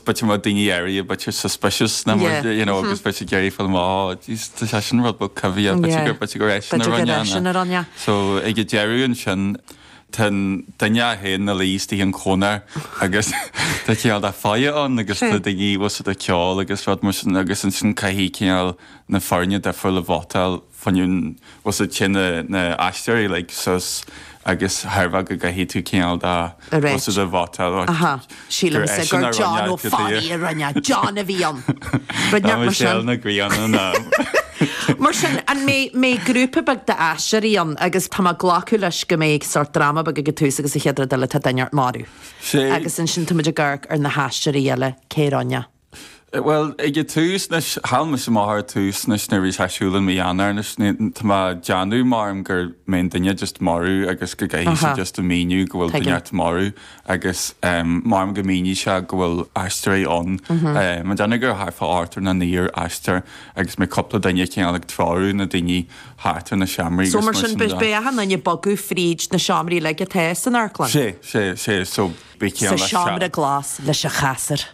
B'fhéidir go mbeadh daoine áirithe b'fhéidir suspicious nó mar sin, you know, agus b'fhéidir ag iarraidh fáil amach, oh, jeez, tá sé sin rud beag coimhthíoch b'fhéidir gur, b'fhéidir gur é sin a rinne é sin a rinne é. So, ag an deireadh ansin, tá an duine a théann ina luí istigh sa chónair agus tá cineál de faire ann agus tá daoine thuas ag ceol agus rud mar sin agus ansin caithfidh cineál na foirne difriúil a vótáil. fionn os a chionn na aisteoirí le sos agus thairbhe go gcaithfidh tú cineál dá cosa de bhotá dá. Aha, sílimse gur John Ó Fodhla a rinne, John a bhí ann. Rud inteacht mar sin. Tá Michelle Nic Grianna ná. Mar sin, an mbeidh mbeidh grúpa beag d'aisteoirí ann agus tá mé ag glacadh leis go mbeidh sórt dráma beag ag an tús agus an chéad rud eile tá duine inteacht marbh. Sea. Agus ansin táimid ag amharc ar na haisteoirí eile, cé a rinne é. Bhuel, ag an tús, anois, chaill mise amach ar an tús, anois, nuair a bhí sé ar siúl i mí Eanáir, anois, ní, tá mé ag déanamh maram go mbeidh an duine just marbh agus go gcaithfidh sé just a mhíniú go bhfuil duine inteacht marbh agus maram go míníonn sé go bhfuil aisteoirí ann. Tá mé ag déanamh gur thart fá ochtar nó naonúr aisteoirí agus beidh cúpla duine acu ann ag treorú na daoine thart ar na seomraí agus mar sin de. So, mar sin, beidh na daoine ag bogadh fríd na seomraí uilig atá san amharclann? Sea, sea, sea, so, beidh sé ann leis an. Sa seomra glas leis an chasar.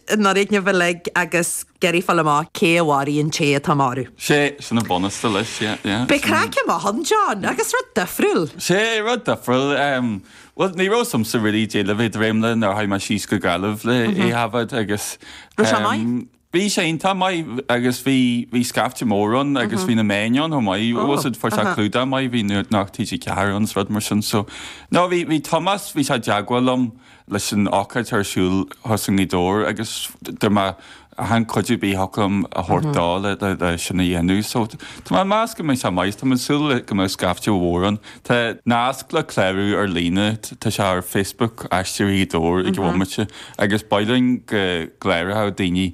i ndoirídnibh uilig agus ag iarraidh fáil amach cé a mharaigh an té atá marbh. Sé sin an bunús atá leis, yeah, yeah. Beidh craic ann mar sin, John, agus rud difriúil. Sea, rud difriúil. Bhuel, ní raibh a fhios agamsa really cad é le bheith ag dréim leis nuair a chuaigh mé síos go Gaillimh le é a thaifead agus. Raibh sé maith? Bhí sé iontach maith agus bhí, bhí scaifte mór ann agus bhí na meáin ann chomh maith, agus fuair sé clúdach maith, bhí Nuacht TG4 ann 's rud mar sin so. No, bhí, bhí Tomás, bhí sé i dteagmháil liom leis an ócáid atá ar siúl thuas i nGaoth Dobhair agus dá mbeadh aon chuidiú ar bith agam a thabhairt dó le sin a dhéanamh. So tá mé ag meas go mbeidh sé maith. Tá mé ag súil go mbeidh scaifte mhór ann. Tá nasc le clárú ar líne, tá sé ar Facebook Aisteoirí Ghaoth Dobhair ag an bhomaite agus ba mhaith linn go gcláródh daoine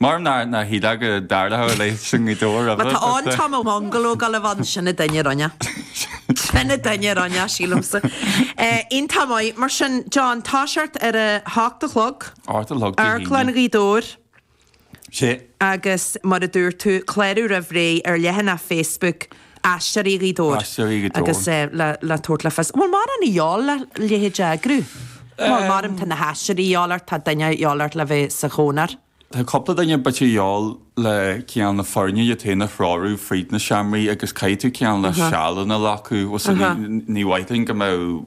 Mar nár nár shíl mé go dtarlódh a leithéid seo i nGaoth Dobhair roimhe. Má tá an t-am a bhungalódh Ollamh Ann, sin an duine a rinne é. Sin an duine a rinne é, sílimse. Iontach maith. Mar sin, John, toiseacht ar a hocht a chlog. Ocht a chlog Dé hAoine. Amharclann Ghaoth Dobhair. Sea. Agus, mar a dúirt tú, clárú roimh ré ar leathanach Facebook. Aisteoirí Ghaoth Dobhair. Aisteoirí Ghaoth Dobhair. Agus é le tabhairt le fios, bhfuil mórán a dhíobháil le leithéid a eagrú, bhuel maram tá na haisteoirí a dhíobháil ort, tá duine a dhíobháil ort le bheith sa chónair. Tá cúpla duine b'fhéidir a dhíobháil le cineál na foirne iad féin a threorú fríd na seomraí agus caithfidh tú cineál na sealanna a ghlacadh. Bhuel so ní ní mhaith linn go mbeadh,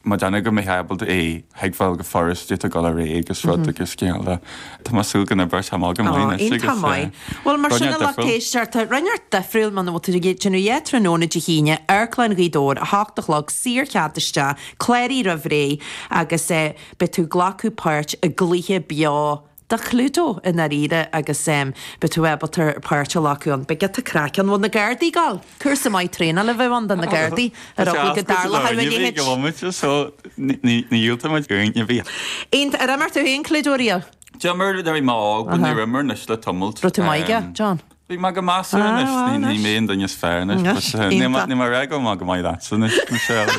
Tá mé ag déanamh go mbeifeá ábalta é a thuigbheáil go furast duit a dhul ar aghaidh agus rud agus cineál de. Tá mé ag súil go n-oibreoidh sé amach go maith. Iontach maith. Bhuel mar sin a lucht éisteachta, rud inteacht difriúil muna bhfuil tú ag déanamh a dhath tráthnóna Dé hAoine, Amharclann Ghaoth Dobhair, 8 a chlog, saor cead isteach, cláraigh roimh ré agus beidh tú ag glacadh páirt i gcluiche beo de Chluedo i ndáiríre agus beidh tú ábalta páirt a ghlacadh ann. Beidh giota craic ann. An bhfuil na Gardaí ag gabháil. Cúrsa maith traenála a bheadh ann do na Gardaí ar eagla go dtarlódh a leithéid. diomaite de, so ní dhiúltaigh muid uainn a bhí. Aon, ar imir tú féin Cluedo riamh? D'imir, bhí mo, ní raibh mé anois le tamalt. Raibh tú maith aige, John? Bhí mé go maith measartha anois. Ní, ní mé an duine is fearr anois. Anois, But, uh, ní, iontach. go raibh maith agat. Go n-éirí go maith leatsa anois, Michelle.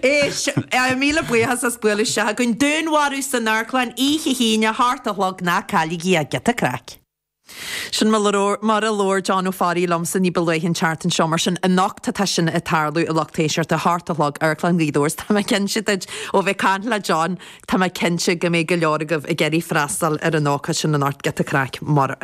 Éist, eh, míle buíochas as bualadh isteach againn. Dúnmharú san amharclann oíche hAoine seacht a chlog ná cailligí é, giota craic. Sin mar labhróir, mar a labhair John Ó Fearraigh liomsa ní ba luaithe an tseachtain seo, mar sin, anocht tá tá sin ag tarlú i Lucht Éisteachta, seacht a chlog Amharclann Ghaoth Dobhair. Is tá mé cinnte, díreach ó bheith ag caint le John, tá mé cinnte go mbeidh go leor agaibh ag iarraidh freastal ar an ócáid sin anocht, giota craic mar